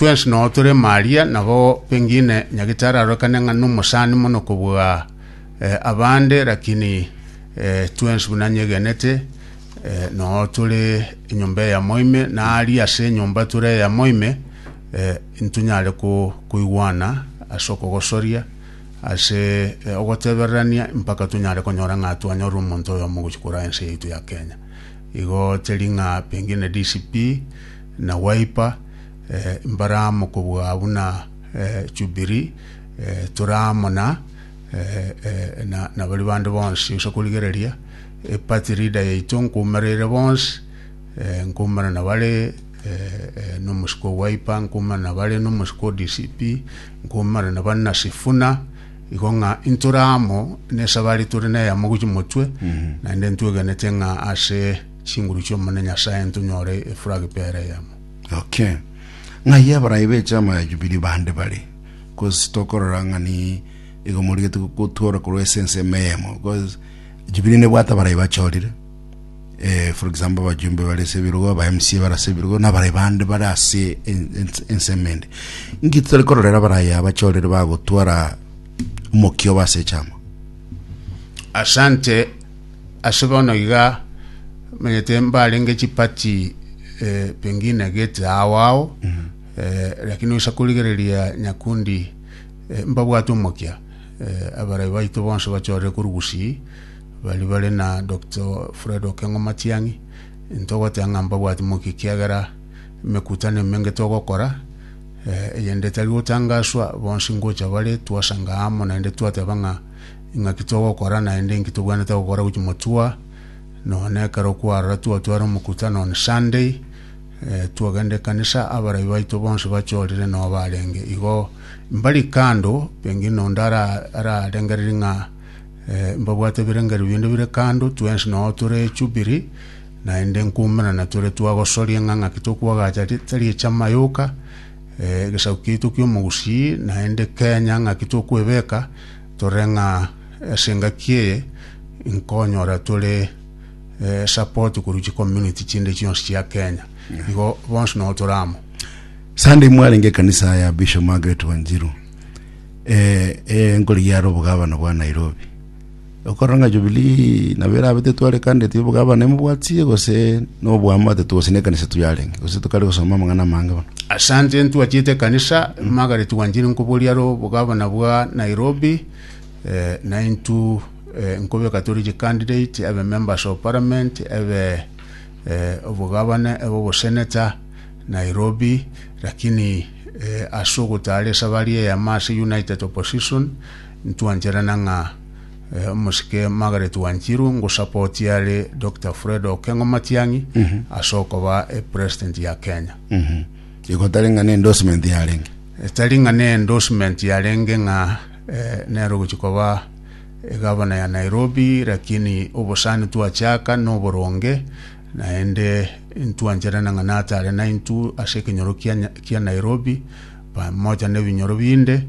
Twensi noo tore Maria, nabo pengine nyagetari arorekane ng'a nomosani mono kobua eh, abande, lakini eh, twensi buna nyegenete eh, noo tore enyomba eyamo ime, na ari ase enyomba tore eyamo ime eh, ntunyare ko- koigwana ase okogosoria ase eh, ogotebererania mpaka tunyare konyora ng'a twanyorire omonto oyomo gochia korwa ense yaitu ya Kenya igo teri ng'a pengine DCP Na gwaipa mbare amo kobua buna Jubili, tore amo na baria bande bonsi, gose korigereria eparty leader yaito nkoumereire bonsi, nkoumera na bare nomosiko o Wiper, nkoumera na bare nomosiko o DCP, nkoumera na bare na Sifuna, igo ng'a intore amo nesabari tore neyemo gochia motwe, naende ntwegenete ng'a ase. Chinguru chi'Omonene Nyasae ntonyore efura gepera eyemo. Ok. Ng'ai abarai b'echama ya Jubilee bande bare? Cause tokorora ng'a ni igo morigete gotwora korwa ase ensemo eyemo cause Jubilee nebwate abarai bachorire eh, for example abajumbe bare ase ebirogo aba MCA bare ase ebirogo na abarai bande bare ase en- ens- ensemo ende inki totari kororera abarai aba bachorire bagotwara omokia obo ase echama Asante. Ase bono iga manyete mbarenge chipati eh, pengine gete ao ao eh, lakini oisa korigereria nyakundi eh, mbabwate omokia eh, abarai baito bonsi bachorire korwa Gusii bari bare na Dr. Fred Okengo Matiang'i ntogoteba ng'a mbabwate mokia ekiagera emekutano emenge togokora eh, eyende etari gotangaswa bonsi ngocha bare twasanga amo naende twateba ng'a Ing'aki togokora, naende inki tobwenerete gokora gochia motua, nonye ekero kwarora twatware omokutano on Sunday, eh, twagenda ekanisa, abarai baito bonsi bachorire noo barenge igo mbari kando, pengine onde ara- ararengereria ng'a eh, mbabwate ebirengerio binde bire kando, twensi noo tore echubiri, naende nkoimerana tore twagosoria ng'a ng'aki tokwagacha ri- tari echama yoka, eh, egesaku kiaito kiomogusii, naende Kenya ng'aki tokwebeka, Tore ng'a ase engaki eye inkonyora tore support korwa chi community chinde chionsi chia Kenya. Igo bonsi nabo tore amo. Sunday mwarenge ekanisa ya Bishop Margaret Wanjiru eh, enkori yare obogabana bwa Nairobi okorora ng'a Jubilee nabo erabe tetware candidate y'obogabana emobwatie gose nobwamate tu gose nekanisa tu yarenge gose tokare gosoma amang'ana amange bono Asante ntwachete ekanisa Margaret twanchire nkoboria aro obogabana bwa Nairobi eh, na intu eh, nkobeka tore chicandidate ebe members of parliament ebe eh, obogabana ebe oboseneta Nairobi lakini eh, ase ogotara esabari eyemo ase United Opposition ntwancherana ng'a eh, omosike Margaret Wanjiru ngosapoti are Dr. Fred Okengo Matiang'i ase okoba eh, president ya Kenya Igo tari ng'a n'endorsement yarenge. Etari ng'a n'endorsement yarenge ng'a eh, nero ogochi koba egavana ya Nairobi, lakini obosani twachaka n'oboronge, naende ntwancherana ng'a natare naintwe ase ekenyoro kia Nya- kia Nairobi, pamoja n'ebinyoro binde,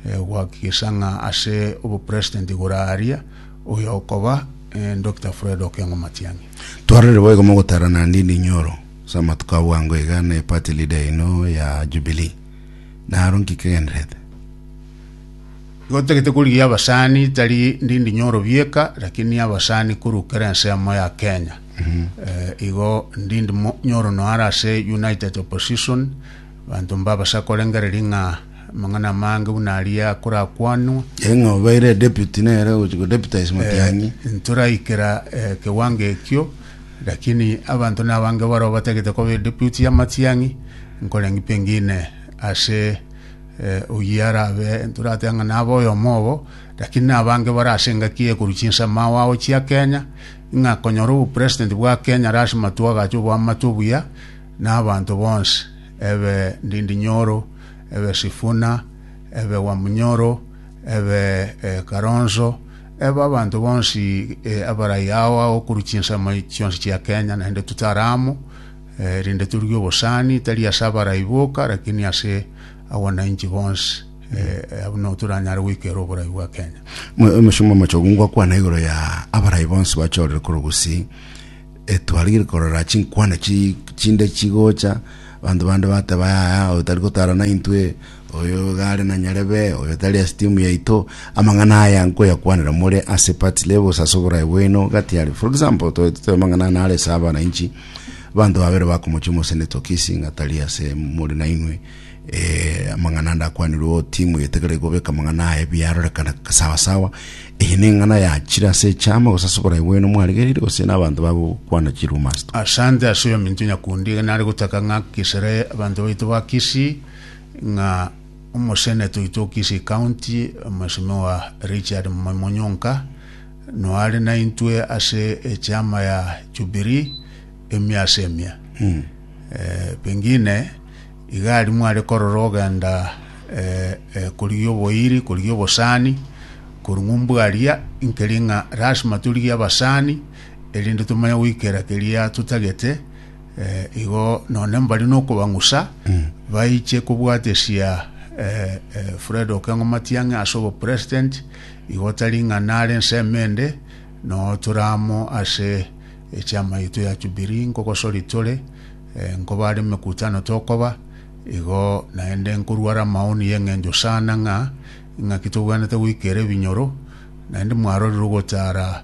eh, gohakikisha ng'a ase obopresident igoro aria, oyo okoba eh, Doctor Fred Okengo Matiang'i. Twarorire boigo mogotara naende inde inyoro. Ase amatuko a bwango iga ne party leader yaino ya Jubilee. Naro nki kegenderete? Igo totagete korigia abasani tari ndindi nyoro bieka lakini abasani korwa kera ense yamo ya Kenya. Eh, igo ndindi mo- nyoro noara ase United Opposition banto mbabase akorengereria ng'a amang'ana amange buna aria akorakwanwa Eng'a obeire deputy nere gochi ko deputize Matiang'i. ntoraikera eh, kiwango ekio Lakini abanto nabange barabwo batagete koba ediputi y'amatiang'i, nkoreng'ia pengine ase eh, oyio arabe nturate ng'a nabe oyomo obo, lakini nabange bare ase engaki eye korwa chinsemo ao agochia Kenya, ng'a konyora obopresident bwa Kenya are ase matwe agache oboamate obuya na abanto bonsi, ebe Ndindi Nyoro, ebe Sifuna, ebe Wamunyoro, ebe eh, Karonzo, Eba abanto bonsi abarai ao ao korwa chinsemo chionsi chia Kenya, naende totare amo, erinde toruge obosani, tari ase abarai boka, lakini ase abwananchi bonsi, abwo nigo toranyare goikera oborai bwa Kenya. Omochie omochogu ngokwana igoro ya abarai bonsi bachorire korwa Gusii, twarigire korora chinkwana chinde chigocha, abanto bande bateba yaya oyo tari gotara naintwe, Oyo iga are na nyarebe, oyo tari ase timu yaito. Amang'ana aya nkoyakwanera more ase party levels ase oborae bwaino gati are. For example, toete tobe amang'ana ane are ase abana inchi, abanto babere bakomochia omosee ne tokisi ng'a tari ase more nainwe. Eh, amang'ana ande akwanirwe oo timu egetegereri gobeka amang'ana aye biarorekana sawa sawa. Eye neng'ana yachire ase echama gose ase oborae bwaino mwarigereire gose na abanto bagokwana chirumours to. Asante ase oyominto Nyakundi iga nare gotaka ng'a kisere abanto baito ba Kisii ng'a omoseneta oito o Kisii County, Mweshimiwa Richard Moi Monyonka, noare naintwe ase echiama ya Jubilee emia ase emia. Eh, pengine iga aria mware korora ogenda eh, eh, korigia oboiri, korigia obosani, korung'u mbwaria, nkeri ng'a lasima torigie abasani, erinde tomanye goikera keria totagete, Eh, igo none mbari nokobang'usa baiche kobwatesia eh, eh, Fred Okengo Matiang'i ase obopresident igo tari ng'a nare ensemo ende no tore amo ase echama yaito ya Jubilee nkogosori tore eh, nkobare emekutano tokoba igo naende nkorware amaoni y'eng'encho sana ng'a ng'aki tobwanete goikera ebinyoro naende mwarorire ogotara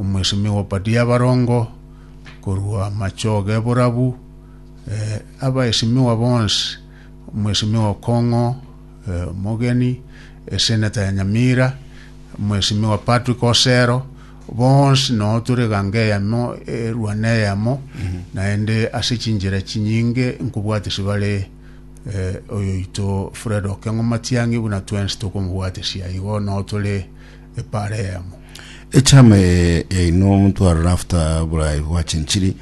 Omosemi bw'Pati y'Abarongo, korwa amachogo eborabu, eh, abaesimigwa bonsi, omwesimigwa okong'o, eh, omogeni, eseneta ya Nyamira, omwesimigwa Patrick Osero, bonsi noo tore ganga eyemo erwana eyemo, naende ase chinchera chinyinge nkobwatisi bare eh, oyoito Fred Okeng'o Matiang'i buna twensi tokomobwatisia igo noo tore epara eyemo. Echama yaino omotwarora after borai bwachenchiri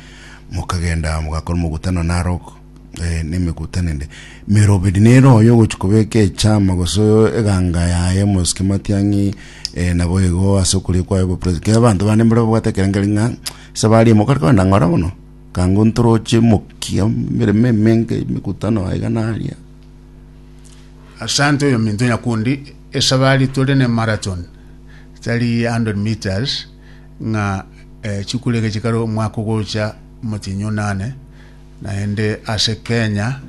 mokagenda mogakora omogutano Narok eh, nemegutano ende merobedi nero oyo ogochi kobeka echama gose eganga yaye mosike matiang'i eh, nabo igo ase okoria kwaye bo president kera abanto bande mbare babwate ekerengeri ng'a ase baria mokare kore nang'ora bono kango ntoroche mokia emeremo emenge emegutano aiga naria Asante oyominto nyakundi esabari tore ne marathon tari ya 100 metres ng'a eh, chikura ege chikare omwaka ogocha motinyi onane naende ase Kenya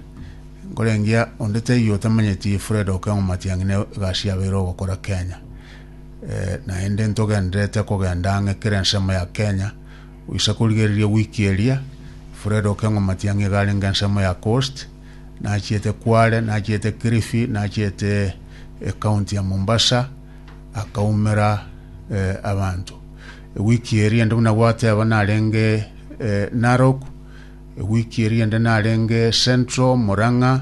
nkorengia onde taiyo otamanyeti Fred Okengo Matiang'i ne egasi yabeire ogokora Kenya eh, naende ntogenderete kogenda ang'e kera ensemo ya Kenya goisa korigereria wiki eria Fred Okengo Matiang'i iga arenge ensemo ya Coast Nachiete Kwale, nachiete Kilifi, nachiete ecounty ya Mombasa, akaumera eh, abanto. Ewiki eri ende buna gwateba narenge eh, Narok, ewiki eri ende narenge Central, Murang'a,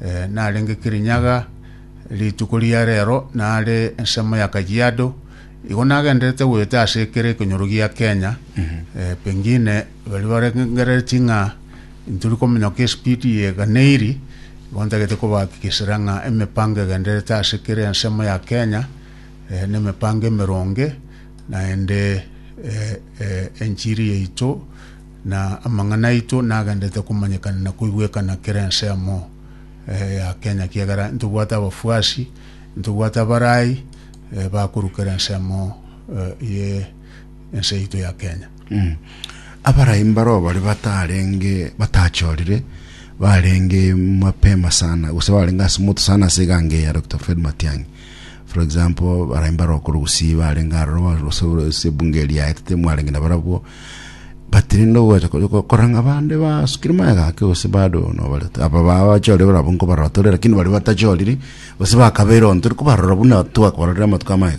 eh, narenge Kirinyaga, rituko ria rero nare ensemo ya Kajiado. Igo nagenderete goeta ase ekero ekenyoro gia Kenya, eh, pengine Baria barengereretie ng'a intori kominyoka esipidi yeganeiri, igo ntagete kobahakikishera ng'a emepango egendererete ase kera ensemo ya Kenya nemepango emeronge, naende enchiri yaito na amang'ana aito nagendererete komanyekana na koigwekana kera ensemo ya Kenya, ekiagera intobwate abafuasi, intobwate abarai bakorwa kera ensemo ye. ense yaito ya Kenya. Abarai mbaro bare batarenge batachorire barenge mapema sana gose barenge ase moto sana ase eganga eye ya Doctor Fred Matiang'i for example barai mbaro okorwa Gusii barenge aroro ba- gose ase ebunge eria yaetete mwarenge na barabwo but rende ogocha ko- ko- korang'a bande basukire magega ake gose bado nobarete aba ba- bachorire barabwo nkobarotore lakini baria batachoriri gose bakabeire onto tikobarora buna twakororire amatuko amaya.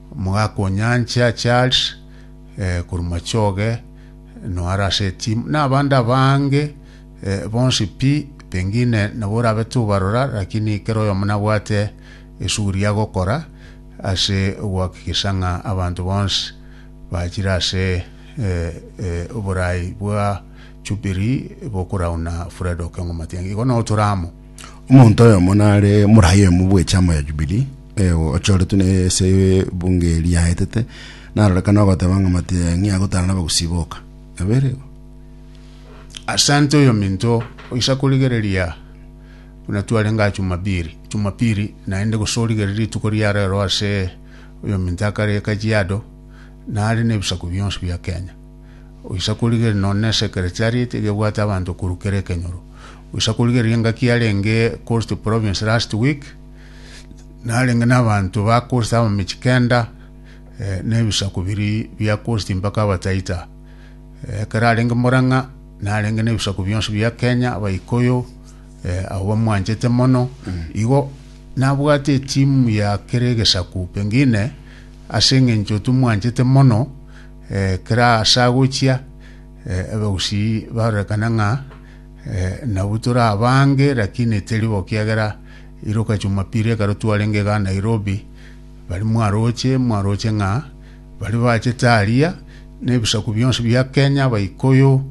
Mogakonyanche ache are, korwa machoge noa are ase etimu, na abande abange bonsi pi, pengine nabo orabe tobarora, rakini kera oyomo nabwate esuguri agokora ase ogoakikisha ng'a abanto bonsi bachire ase oborai bwa Jubilee bokorauna Fred Okengo Matiang'i. Igo nao tore amo. Omonto oyomo nare morai oyomo bw'echama ya Jubilii, eh, ochoretwe n'ense ebunge eria yaetete, narorekana ogoteba ng'a matiang'i agotara nabagusi boka. Nabere igo. Asante oyominto oisa korigereria buna twarenge aa Jumapili, Jumapili naende gose origererie rituko ria rero ase oyominto akare Kajiado nare na ebisaku bionsi bia Kenya. Oisa korigereria nonya nesekretariat iga ebwate abanto korwa kera ekenyoro. Oisa korigereria engaki yarenge Coast Province last week, narenge na abanto ba Coast abamechie kenda, eh, na ebisaku biria bia Coast mpaka Abataita. Eh, ekero arenge Murang'a, narenge na ebisaku bionsi bia Kenya, Abaikuyu, eh, abo bamwanchete mono. Igo, nabwate etimu ya kera egesaku, pengine, ase eng'encho timwanchete mono, Eh, kera ase agochia, eh, abagusii barorekana ng'a eh, nabwo tore abange, lakini teri bo kiagera iroka Jumapili ekero twarenge iga Nairobi, bari mwaroche mwaroche ng'a bari bachete aria na ebisaku bionsi bia Kenya, Abaikuyu,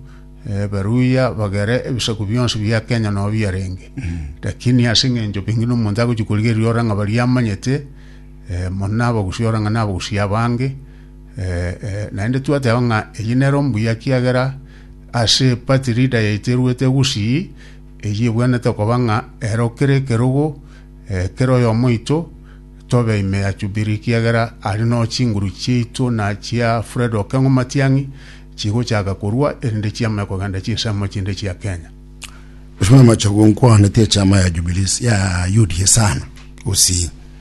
eh, Abaluhya, bagere ebisaku bionsi bia Kenya nabo biarenge. Lakini ase eng'encho pengine na omonto agochia korigereria ore ng'a baria amanyete, eh, mono na abagusii ore ng'a na abagusii abange, Eh, eh, naende twateba ng'a eye nero mbuya kiagera ase party leader yaito eruete gusii, eye ebwenete koba ng'a ero kere ekerogo eh, kera oyomo oito tobe ime ya Jubilee kiagera ari no chinguru chiaito na chia Fred Okeng'o Matiang'i chigochaka korua erinde chiamanye kogenda chinsemo chinde chia Kenya. Mheshimiwa Machogu, nkwaanete echama ya Jubilees ya UDA sana gusii.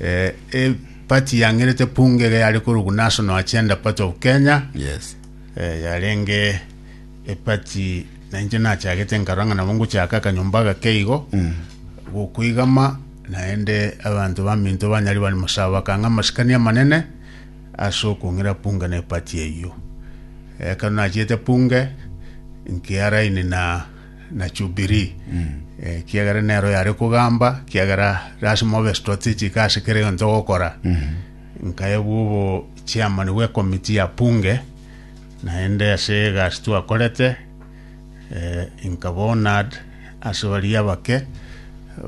Eh, eh, party yang'erete punga iga yare korugu National Agenda Party of Kenya Yes. eh, yarenge epati nainche nachagete nkarora ng'a nabo ngochaka akanyomba gake igo Mm. gokoigama naende abanto baminto banyari bari mosaba bakanga amasikani amanene ase okong'ira punga na epati eyio ekero nachiete punge nkiaraini na na Jubilii, ekiagera nero yare kogamba, ekiagera lasima obe strategic ase kera egento ogokora. Nkayebwa obo chairman bwe committee ya Bunge, naende ase egasi twakorete, eh, nkaba honored ase baria abake,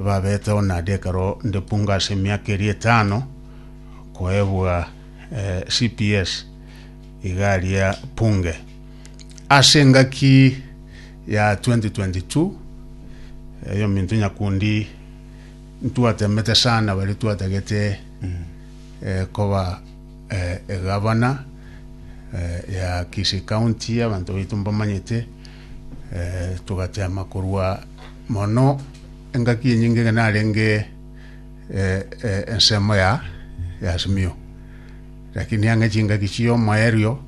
babete honored ekero nde Bunge ase emiaka eria etano, koebwa eh, CPS iga aria Bunge. Ase engaki ya 2022, eyominto nyakundi ntwatemete sana baria twatagete koba egavana ya Kisii County, abanto baito mbamanyete, togatema korwa mono engaki enyinge ekero narenge ensemo ya Azimio, lakini ang'e chingaki chi'omoerio.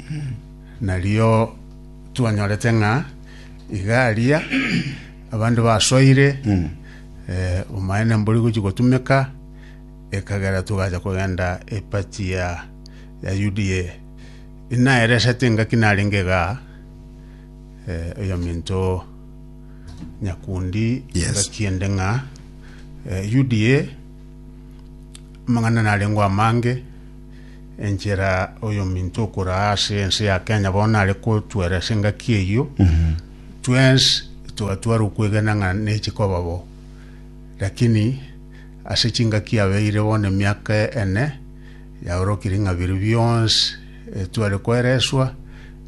Nario twanyorete ng'a iga aria abande basoire, eh, omaene mbori gochia gotumeka, ekagera togacha kogenda epati ya ya UDA. Inaeresete engaki narenge iga, eh, oyominto Nyakundi Yes. engaki ende ng'a eh, UDA amang'ana narengeo amange, enchera oyominto okoraa ase ense ya Kenya bono nare kotwera ase engaki eyio twensi togatwara okwegena ng'a nechi koba bo lakini ase chingaki yabeire bono emiaka ene yaorokire ng'a biri bionsi etware koereswa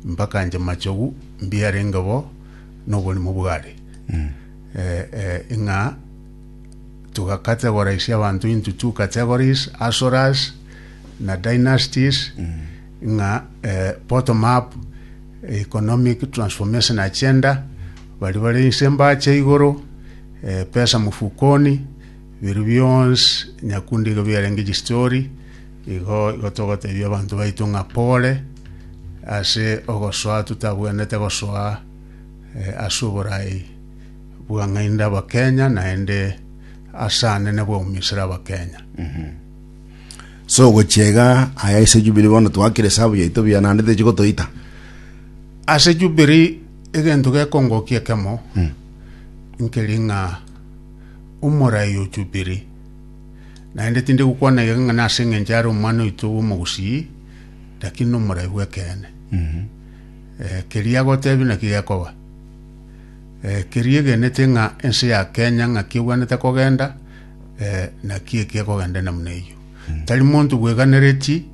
mpaka nche machogu mbiarenge bo na oborimo bware eh, eh, ng'a Togacategories abanto into two categories, Asoras na Dynasties, ng'a eh, bottom up, economic transformation agenda, bari bare inse mbacha igoro, eh, pesa mufukoni, biru bionsi nyakundi iga biarenge chistori, igo igo togotebia abanto baito ng'a pole ase ogosoa totabwenerete gosoa eh, ase oborai. Bwang'aini Abakenya naende as'ane na bwaumisire Abakenya. So ogochia iga aya ase Jubilee bono twakire esabu yaito buya naende techi gotoita. Ase Jubilee egento gekongokia ekemo nkeri ng'a omorai o Jubilee naende tindi gokwana iga ng'a nase engencho are omwana oito omogusii lakini nomorai bw'ekeene. Keria agotebia naki gekoba. Eh, keria egenete ng'a ense ya Kenya ng'aki ebwanete kogenda, eh, naki eki ekogenda namuna eyio. Tari monto bweganereti,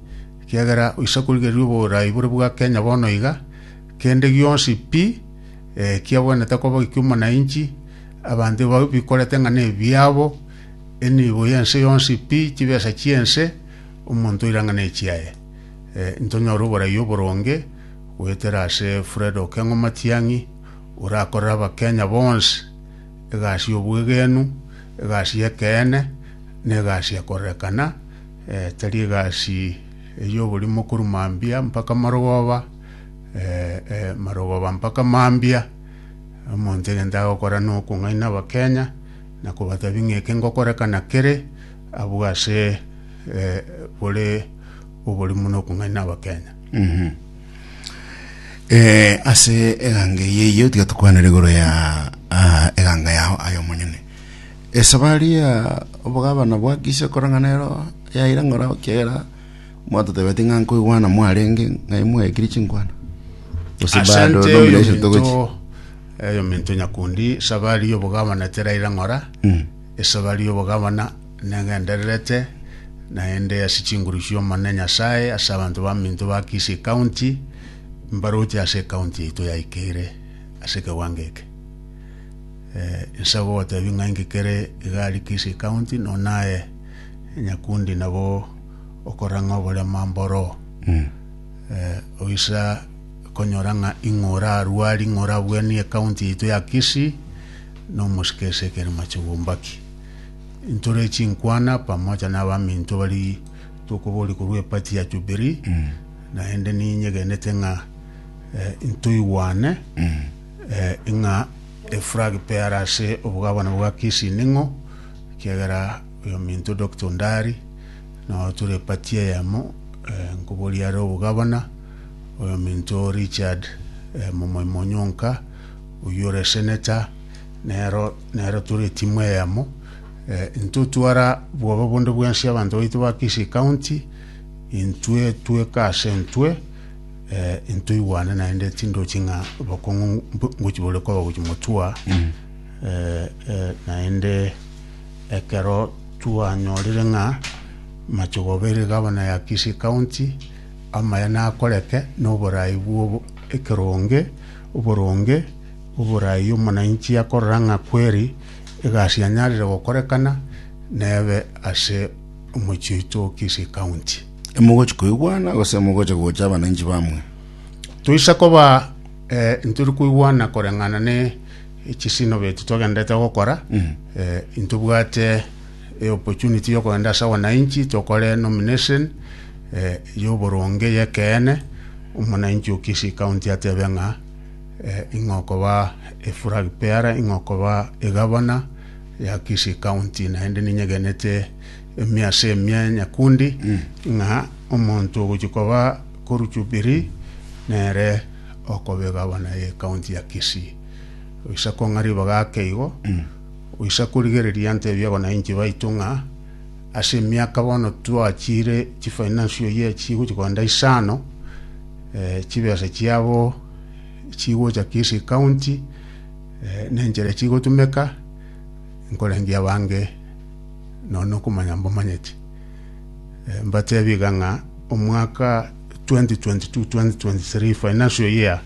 kiagera oisa korigereria oboraai bore bwa Kenya bono iga, kende gionsi pi, eh, kiabwanete koba eki'omonainchi, abanto ba- bikorete ng'a nebiabo, enibo y'ense yonsi pi, chibesa chi'ense, omonto oira ng'a nechiaye. Eh, ntonyore oboraai oboronge, goetera ase Fred Okengo Matiang'i, orakorere Abakenya bonsi egasi y'obwegenwa, egasi y'ekeene, na egasi ekorerekana, tari egasi ey'oborimo korwa mambia mpaka marogoba, marogoba mpaka mambia. Omonto egento agokora na okong'aina Abakenya na kobatebi ng'a eke ngokorekana kere abwo ase bore oborimo na okong'aina Abakenya. Eh, ase eganga eye eyio tiga tokwanere igoro ya ah, eganga yao ayo monyene esabari ya obogabana bwa kise korang'ana ero yaira ng'ora kiagera mwatotebeti ng'a nkoigwana mwarenge ng'ai mwaekiri chinkwana gose bado asante oyo nomination togochi minto oyo minto nyakundi sabari y'obogabana teraira ng'ora esabari y'obogabana negendererete, naende ase chinguru chi'Omonene Nyasae, ase abanto baminto ba Kisii County, mbaroche ase ecounty yaito ya Ikeire ase ekewango eke. Inse gogotebia ng'a inki kere iga aria Kisii County, no naye Nyakundi nabo okoreng'a oborema mboro. Oisa konyora ng'a ing'o orarue aria, ing'o orabuanie ecounty yaito ya Kisii, nomosike ase ekerema chobwambaki. Ntore chinkwana pamoja n'abaminto bari tokoboria korwa epati ya Jubili, naende ninyegenete ng'a eh, ntoigwane eh, ng'a eflag pear ase obogabana bwa Kisii ning'o, ekiagera oyominto Dr. Ondari nao tore epati eyemo eh, nkoboria are obogabana, oyominto Richard eh, Momoimo Onyonka oyio ore eseneta nero Nero tore etimu eyemo, eh, intwe twara bwoba bonde bwensi abanto baito ba Kisii County, intwe tweka ase intwe, eh, intwe igwane naende tindochi ng'a abakong'u mbo- ngochi bore koba gochi motua, eh, eh, naende ekero twanyorire ng'a machogoba ere gavana ya Kisii County amaya nakoreke na oborai bwobo ekeronge oboronge Oboraai omonainchi akorora ng'a kweri egasi yanyarire gokorekana, nebe ase omochie oito o Kisii County. Imogochi koigwana gose mogocha gocha abanainchi bamwe? Toisa koba eh, ntori koigwana koreng'ana ne echisinobo echi twagenderete gokora eh, intobwate eh, opportunity yokogenda ase abanainchi tokore nomination eh, yoboronge y'ekeene omonainchi o Kisii County atebe ng'a Ing'okoba eflag bearer, ing'okoba egavana ya Kisii County, naende ninyegenete emiase emia nyakundi ng'a omonto ogochia koba koru Jubilee nere okoba egavana ye county ya Kisii. Oise kong'a ribaga ake igo, oise korigereria ntebie bono nainche baito ng'a ase emiaka bono twachire chifinance oyie chigochia kogenda isano, chibesa chiabo chigocha Kisii County eh, nenchera echigotumeka nkorangia abange nonya na okomanya mbamanyeti Eh, mbatebie iga ng'a omwaka 2022-2023 financial year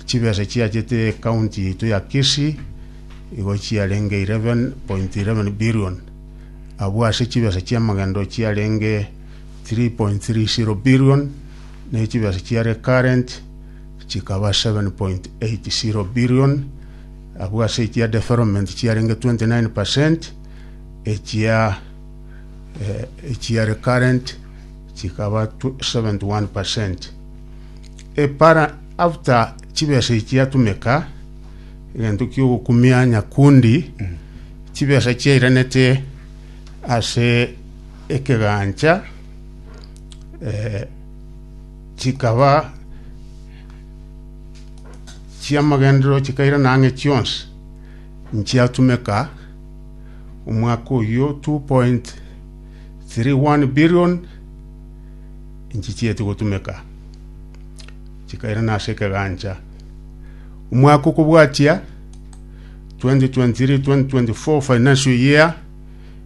chibesa chiachete county yaito ya Kisii igo chiarenge 11.11 billion abwo ase chibesa chiamagendo chiarenge 3.30 billion ne chibeesa chia recurrent chikaba 7.80 billion, abwo ase echia development chiarenge 29%, echia eh, echia recurrent chikaba tw- 71%. Epara after chibesa echiatumeka egento kiogokumia nyakundi chibesa chiairanete ase ekegancha eh, chikaba chi'amagenderero chikairana ang'e chionsi nchiatumeka omwaka oyio 2.31 billion nchichieti gotumeka chikairana ase ekegancha omwaka okobwatia 2023-2024 financial year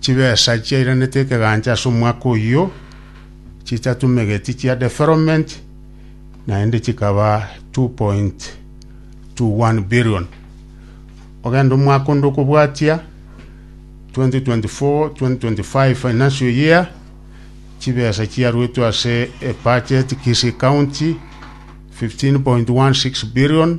Chibesa chiairanete ekegancha ase omwaka oyio chichatumegeti chia development naende chikaba 2.21 billion. Ogenda omwaka onde okobwatia 2024, 2025 financial year chibesa chiaruetwe ase ebudget Kisii County 15.16 billion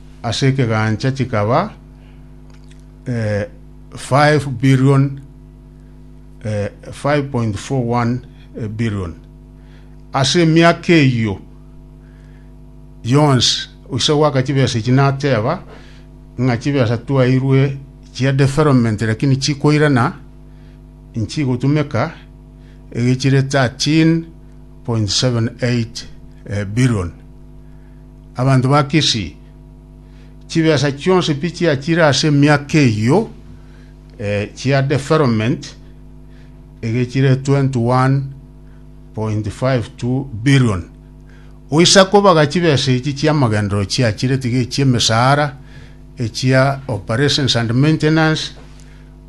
ase ekegancha chikaba eh, 5 billion eh, 5.41 eh, billion ase emiaka eyio yonsi oise gwaka chibesa echi nateba ng'a chibesa twairwe chia development lakini chikoirana nchigotumeka egechire 13.78 eh, billion Abanto ba Kisii, chibesa chionsi pi chiachire ase emiaka eyio chia deferoment egechire 21.52 billion. Goisa kobaga chibesa echi chi'amagenderero chiachire tiga echi'emesara, echia operations and maintenance,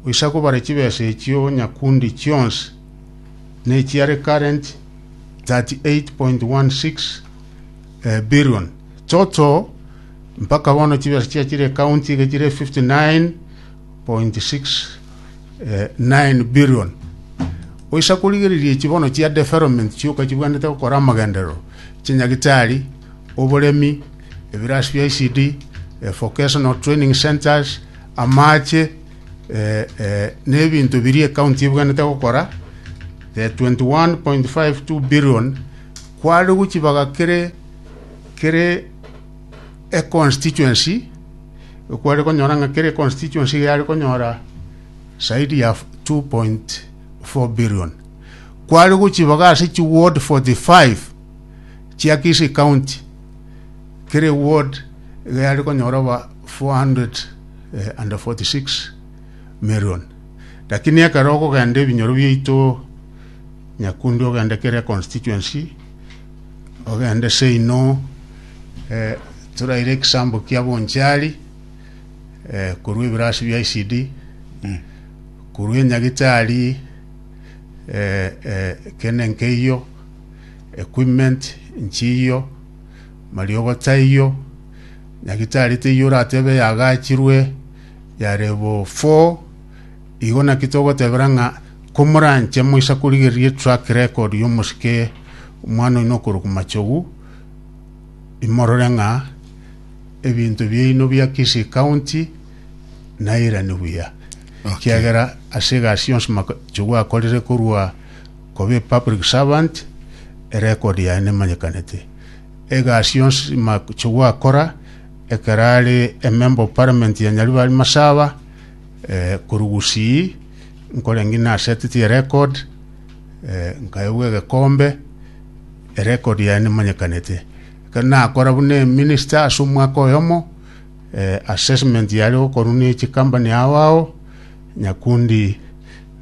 goisa kobara chibesa echio nyakundi chionsi na echia recurrent 38.16. eh, billion chocho mpaka bono chibesa chia chire county iga chire 59.69 billion oisa korigereria echi bono chia development chioka chibwanete gokora amagenderero chinyagitari oboremi ebirasi bia icd eh, vocational training centers amache eh, eh, n'ebinto biria ekaunti ebwanete gokora the 21.52 billion Kwarigwe chibaga kere kere econstituency, kware konyora ng'a kere constituency iga yare konyora zaidi ya 2.4 billion. Kwarigwe chibaga ase chi ward 45 chia Kisii County, kere ward iga yare konyora oba 446 million. Lakini ekero okogenda ebinyoro biaito Nyakundi ogende kere constituency, ogende seino eh, toraire ekisambo kia Bonchari eh, korwa ebirasi bia ICD korwa enyagitari eh, eh, kene nkeiyo equipment nchiyo mariogo taiyo nyagitari teiyo oratebe yagachirwe yarebo four Igo naki togotebera ng'a komoranche moisa korigereria track record y'omosike omwana oino okorokwa Machogu, imorore ng'a ebinto biaino bia Kisii County nairani buya. Ekiagera ase egasi yonsi Machogu akorire korwa kobe public servant, erecord yaye nemanyekanete. Egasi yonsi Machogu akora ekero are Emember of Parliament ya Nyaribari Masaba, Eh, korwa gusii nkore ng'ina naseteti erekod eh, nkaegwa egekombe erekod yaye nemanyekanete ekero nakora buna eminister ase omwaka oyomo eh, assessment yare gokorwa ne chikambani ao ao nyakundi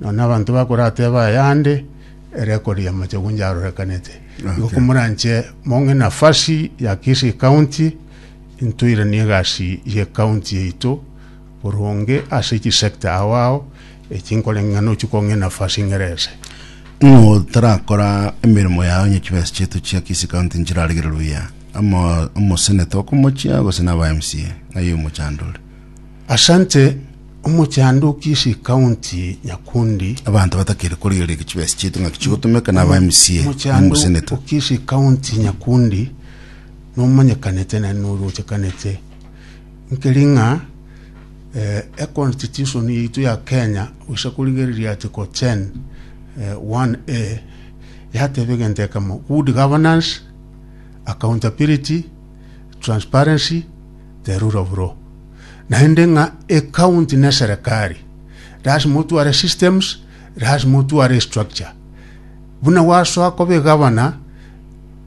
nonye abanto bakorateba ayande erekod ya machagu njarorekanete Okay. igo komoranche mong'e nafasi ya kisii county ntoiranie egasi ye county yaito Boronge ase chi sector ao ao echi nkorenge ng'a nochi kong'a enafasi ing'ere ese. Ng'o tarakora emeremo yao onye chibesa chiaito chia Kisii County nchiraregere buya? Amo omoseneta okomochia gose na aba MCA? Ng'ai omochando ore? Asante, omochando o Kisii County Nyakundi. Abanto batakeri korigereria chibesa chiaito ng'aki chigotomeka na aba MCA na Omochando omoseneta. o Kisii County Nyakundi nomanyekanete naende noruochekanete. Nkeri ng'a eConstitution yaito ya Kenya, gochia korigereria Article 10, 1A, yateba egento ekemo, Good governance, accountability, transparency, the rule of law. Naende ng'a ecounty na eserekari, lasima otware esystems, lasima otware estructure. Buna gwasoa koba egavana,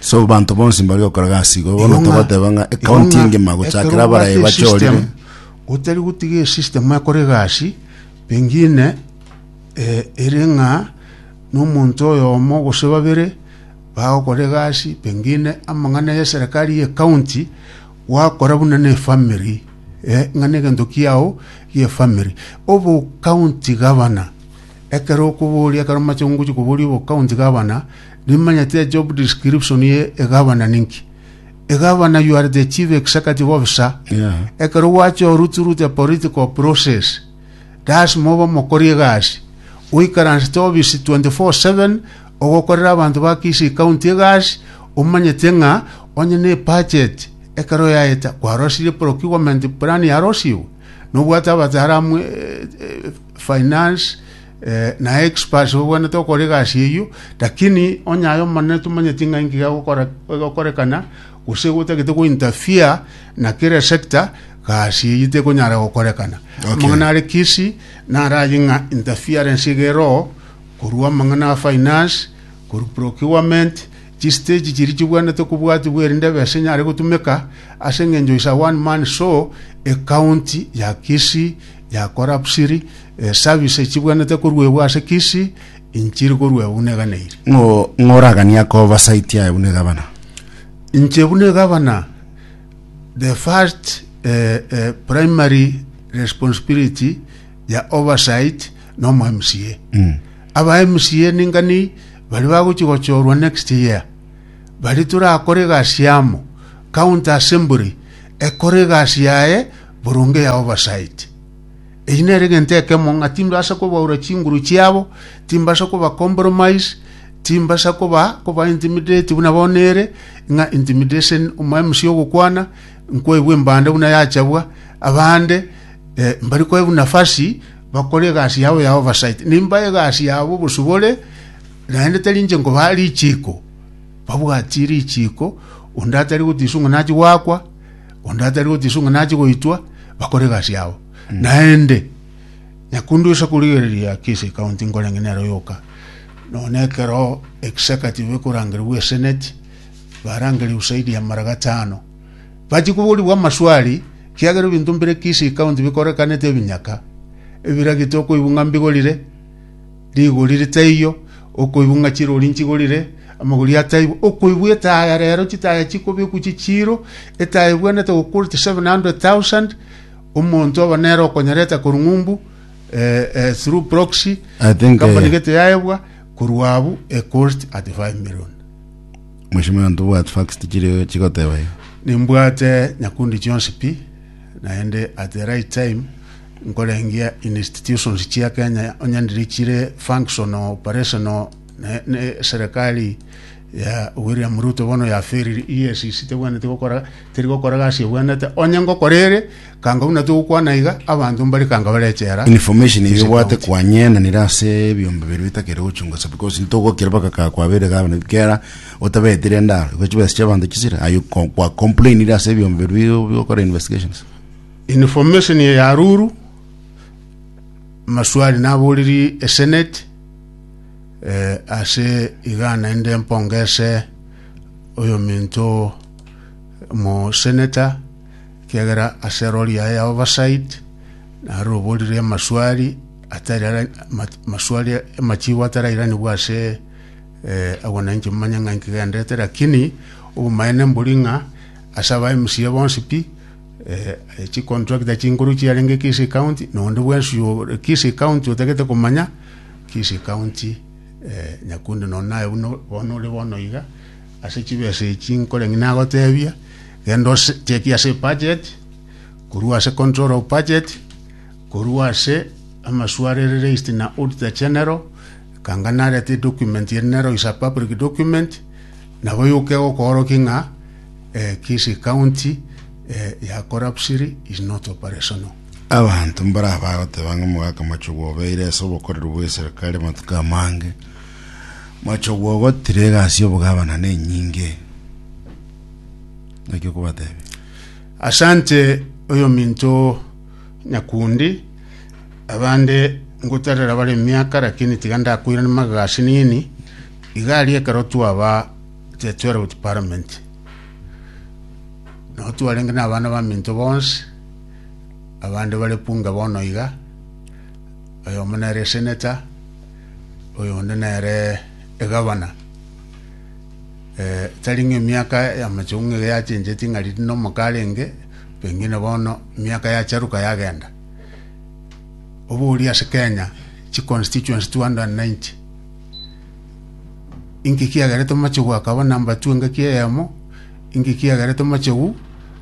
So abanto bonsi mbare gokora gasi igoro, bono togoteba ng'a ekaunti engima gochakera abarayi bachorire. Otari gotiga esystem ekore egasi pengine eh, ere ng'a nomonto oyomo gose babere bagokora egasi pengine amang'ana ya eserekari ya ekaunti gwakora buna na efamiri eh, ng'a na egento kiao gia efamiri. Obo county governor ekero okoboria ekero mache ngochi koboria obo county governor Nimanyete job description ye egavana ninki. Egavana you are the chief executive officer. Yeah. Ekero gwachorwa through the political process, lasima obe omokori egasi. Oikaransete office 24/7 ogokorera abanto ba Kisii County egasi omanyete ng'a onye ne budget ekero yaeta kwarosirie procurement plan yarosiwe. Nobwate abataramu eh, eh, finance Eh, naye Expas obwanete okora egasi eyio, lakini onye aye omonene tomanyeti ng'a inki gagokora- egokorekana, gose gotagete gointerfere na kere sector, gasi eyio tekonyara gokorekana. Okay. Amang'ana are kisi, naraye ng'a interference iga eroo, korwa amang'ana a finance, korwa procurement, chistage chiria chibwanete kobwatibwa erinde ebesa enyare gotumeka, ase eng'encho is a one man show, ecounty ya Kisii, ya collapsiri, Esabisa echibwenerete koruegwa ase Kisi, inchiri koruegwa buna eganeiri. Ng'o ng'oraganie akoba saiti aye buna egabana? Inche buna egabana, the first eh, eh, primary responsibility ya oversight na omo MCA. Mm. Aba MCA ningani bari bagochi gochorwa next year. Bari turakore egasi yamo. County Assembly ekore egasi yaye boronge ya oversight. Eye nere egento ekemo ng'a timbasa kobaura chinguru chiabo, timbasa koba compromise, timbasa koba koba intimidate buna bono ere ng'a intimidation omwemsi ogokwana nkoebwa embanda buna yachabwa abande eh, mbari koebwa nafasi bakore egasi yabo ya oversight nimba egasi yabo obosubore naende tari inche nkoba richiko babwatie richiko onde atari gotisu ng'a nachi gwakwa onde atari gotisu ng'a nachi goitwa bakore egasi yabo Naende, nyakunde oise korigereria ki ase ekaunti nkorenge nere oyoka, nonya ekero executive ekorangerigwa eseneti, barangerie usaidi ya mara gatano. Bachi koborigwa amaswali, kiagera ebinto mbire ki ase ekaunti bikorekanete ebinyaka, ebiragite okoigwa ng'a mbigorire, rigori ritaiyo, okoigwa ng'a chirori nchigorire, amagori ataibo, okoigwa etaya rero chitaya chikobekwa chichiiro, etaya ebwenerete gokuwa 700,000, Omonto obo nere okonyareta korwa ng'umbu, eh, eh, through proxy, I think, company eh, gete yaebwa korwa abu a cost at 5 million. Mheshimiwa ntobwati facts chiri chigoteba iga. Nimbwate nyakundi chionsi pi naende at the right time nkorengia institutions chia Kenya onye ndiri chire functional operational Ne- ne- eserekari ya william ruto bono yaferire esisi tebwaneti gokora teri gokora gasi ebwenete onye ngokora ere kanga buna togokwana iga abanto mbare kanga bare echera information ase eyobwate county. kwanyenanire ase ebiombe biri bitakere gochunga ase because ntogokera baka ka kwabeire gavana kera otabetire endaro igo chibesa chiabanto chisire aye ko- kwa complainire ase ebiombe biri bi- bigokora investigations information ya ruru maswali naboriri esenate Eh, ase iga naende mpongese oyominto omoseneta, ekiagera ase rori yaye ya oversight naroborire amaswari atari ara- ma- maswari amachigo atarairanigwa ase eh, abananchi momanye ng'a nkigendete lakini obomaene mbori ng'a ase aba MCA bonsi pi Eh, eh, chicontractor chinkuru chiarenge Kisii County, nonde bwensi yo- Kisii County otagete komanya, Kisii County, eh, Nyakundi nonde naye buna bono ore bono iga, ase chibesa echi nkore ng'a nagotebia, genda ose chekia ase ebudget, korwa ase control of budget, korwa ase amaswe are released na Auditor General, ekanga narete edocument ere nero is a public document, nabo yoka egokoorokia ng'a. Kisi County ya Korapsiri is not operational. Abanto mbaraba agoteba ng'a omogaka Machogu obeire ase obokoreri bw'eserikari amatuko amange. Machogu ogotira egasi y'obogavana nenyinge. Naki okobatebia? Asante oyominto Nyakundi, abande ngotarera bare emiaka lakini tiga ndakoirania magasi nini, iga aria ekero twaba Tiatwera gochia Paramenti, nao twarenge nabana baminto bonsi, abande bare bunge bono iga, oyomo nere eseneta, oyonde nere egavana. Eh, tari ng'a emiaka y'amachongo ng'a iga yachencheti ng'a riria na omoka arenge, pengine bono emiaka yacharuka yagenda. Oboria ase Kenya, chiconstituency two hundred and ninety. Inki kiagere Tomachogu akaba nambatwe engaki eyemo? Inki kiagere Tomachogu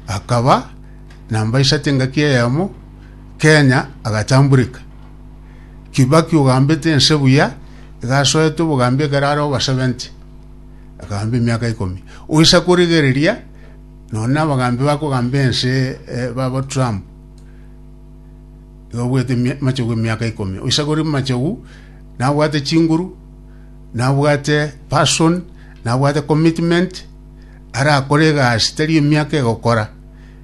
akaba namba isate engaki eyemo? Kenya agatambureka. Kibaki ogambete ense buya igasoete obogambi ekero are obasebenti akagamba emiaka ikomi. Oisa korigereria nonye na abagambi bakogamba ense eh, babo Trump iga obwete emi- Machogu emiaka ikomi. Oisa kori Machogu Nabwate chinguru, nabwate passion, nabwate commitment, arakore egasi tari emiaka egokora,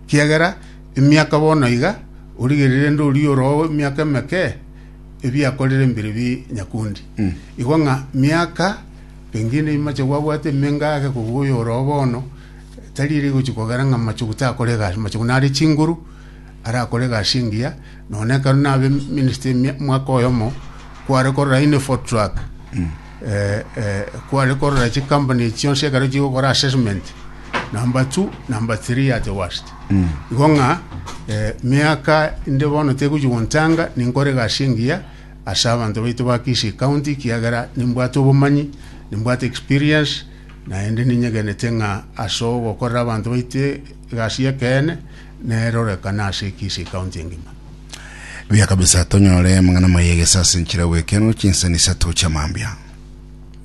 ekiagera emiaka bono iga origererire nde oria oroo emiaka emeke ebiakorire mbire bi nyakundi. Igo ng'a miaka pengine imache gwabwate emenga ake kobua oyo oroo bono tari ere egochi kogera ng'a mache gotakore egasi, mache nare chinguru, arakore egasi engiya, nonya ekero nabe minister ime- omwaka oyomo, kware korora Infotruck, eh, eh, kware korora chicompany echi chionsi ekero chigokora assessment, number two, number three at the worst. Igo ng'a eh, miaka inde bono tegochi gontanga ninkore egasi engiya ase abanto baito ba Kisii county ekiagera nimbwate obomanyi, nimbwate experience, naende ninyegenete ng'a ase ogokorera abanto baito egasi y'ekeene, nerorekane ase ekeisi ekaunti engima. Buya kabisa tonyore amang'ana maye egesa ase enchera y'oboekeano chinsani isato chi'amambia.